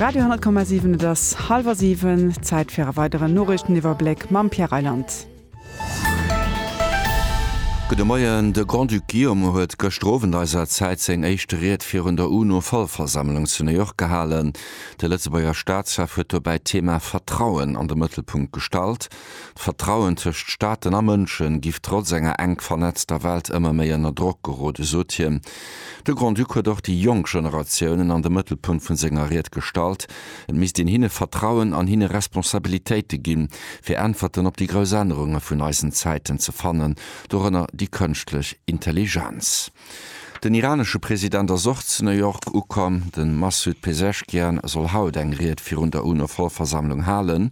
Radio 10,7 Et ass hallwer siwen, Zäit fir e weideren Noriichteniwwerbléck mam Pierre Reyland. Gudde Moien, De Grand-Duc Guillaume huet gëschter Owend eiser Zäit seng éischt Ried virun der UNO-Vollversammlung zu New York gehalen. De Lëtzebuerger Staatschef huet dobäi d'Thema Vertrauen an de Mëttelpunkt gestallt. D'Vertrauen tëscht Staaten a Mënsche giff trotz enger enk vernetzter Welt ëmmer méi ënner Drock gerode, sot hien. De Grand-Duc huet och déi jonk Generatiounen an de Mëttelpunkt vu senger Ried gestallt. Et misst een hinne Vertrauen an hinne Responsabilitéite ginn, fir Äntwerten op déi grouss Ännerunge vun eisen Zäiten ze fannen, dorënner déi kënschtlech Intelligenz. Den iranesche President ass och zu New York ukomm. De Massoud Pezeshkian soll haut eng Ried virun der UNO-Vollversammlung halen.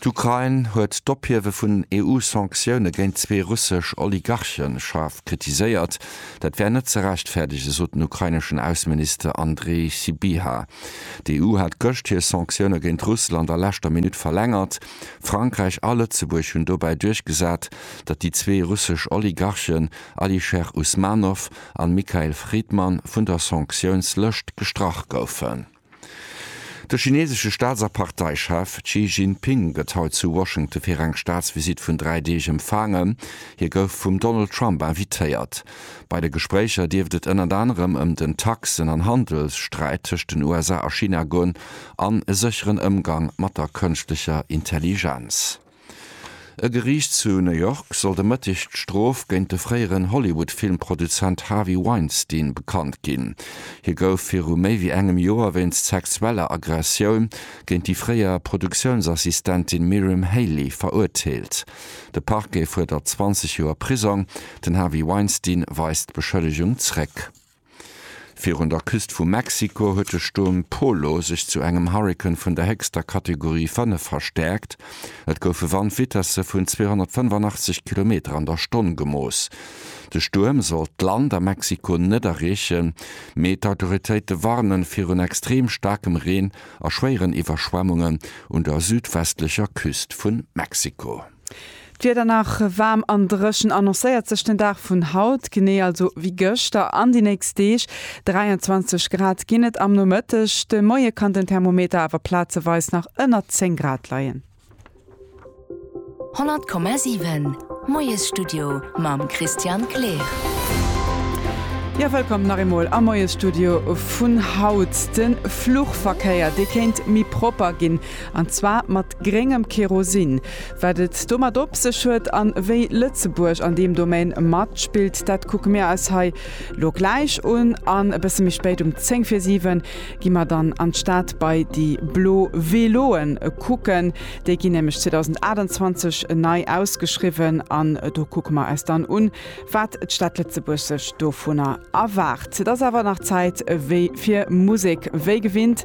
D'Ukrain huet d'Ophiewe vun EU-Sanktioune géint zwee russesch Oligarche schaarf kritiséiert. Dat wär net ze rechtfäerdege, sot den ukraineschen Ausseminister Andrii Sybiha. D'EU hat gëscht hir Sanktioune géint Russland a leschter Minutt verlängert. Frankräich a Lëtzebuerg hunn dobäi duerchgesat, datt déi zwee russesch Oligarchen Alisher Usmanov an Mikhail Fridman vun der Sanktiounslëscht gestrach goufen. De chinesesche Staats a Parteichef Xi Jinping gëtt haut zu Washington fir eng Staatsvisitt vun dräi Deeg empfaangen. Hie gouf vum Donald Trump invitéiert. Bei de Gespréicher dierft et ënnert anerem ëm den Taxen an Handelssträit tëscht den USA a China goen an e sécheren Ëmgang mat der Kënschtlecher Intelligenz. E Geriicht zu New York soll de Mëtteg d'Strof géint de fréieren Hollywood-Filmproduzent Harvey Weinstein bekannt ginn. Hie gouf viru méi wéi engem Joer wéinst sexueller Aggressioun géint déi fréier Produktiounsassistentin Miriam Haley verurteelt. De Parquet fuerdert 20 Joer Prisong. Den Harvey Weinstein weist d'Beschëllegung zréck. Virun der Küst vu Mexiko huet de Stuerm Polo sech zu engem Hurrikan vun der héchster Kategorie 5 verstäerkt. Et goufe Wandvitesse vun 285 Kilometer an der Stonn gemooss. De Stuerm soll d'Land a Mexiko net erreechen, mee d'Autoritéite warnen virun extrem staarkem Reen a schwéieren Iwwerschwemmungen un der südwestlecher Küst vu Mexiko. D'Wieder nach waarm an dréchen annoncéiert sech den Dag vun haut, genee also wéi gëschter an déi nächst Deeg. 23 Grad ginn et am Nomëtteg, de Moie kann den Thermometer awer plazeweis nach ënner 10 Grad leien. 100,7 Moiesstudio mam Christian Kleer. Jo, wëllkomm nach eemol am Moiesstudio vun haut. De Fluchverkéier, dee kéint méi propper ginn. An zwar mat gréngem Kerosin. Wat et domat op sech huet an wéi Lëtzebuerg an deem Domaine matspillt, dat kucke mir eis hei lo gläich un. An e bësse méi spéit, um 10 vir 7, gi mer dann an d'Stad bei déi blo Veloen kucken. Déi ginn nämlech 2028 nei ausgeschriwwen an do kucke mer eis dann un, wat d'Stad Lëtzebuerg sech dovunner erwaart. Et ass awer nach Zäit wéi fir Musek. Wéi gewinnt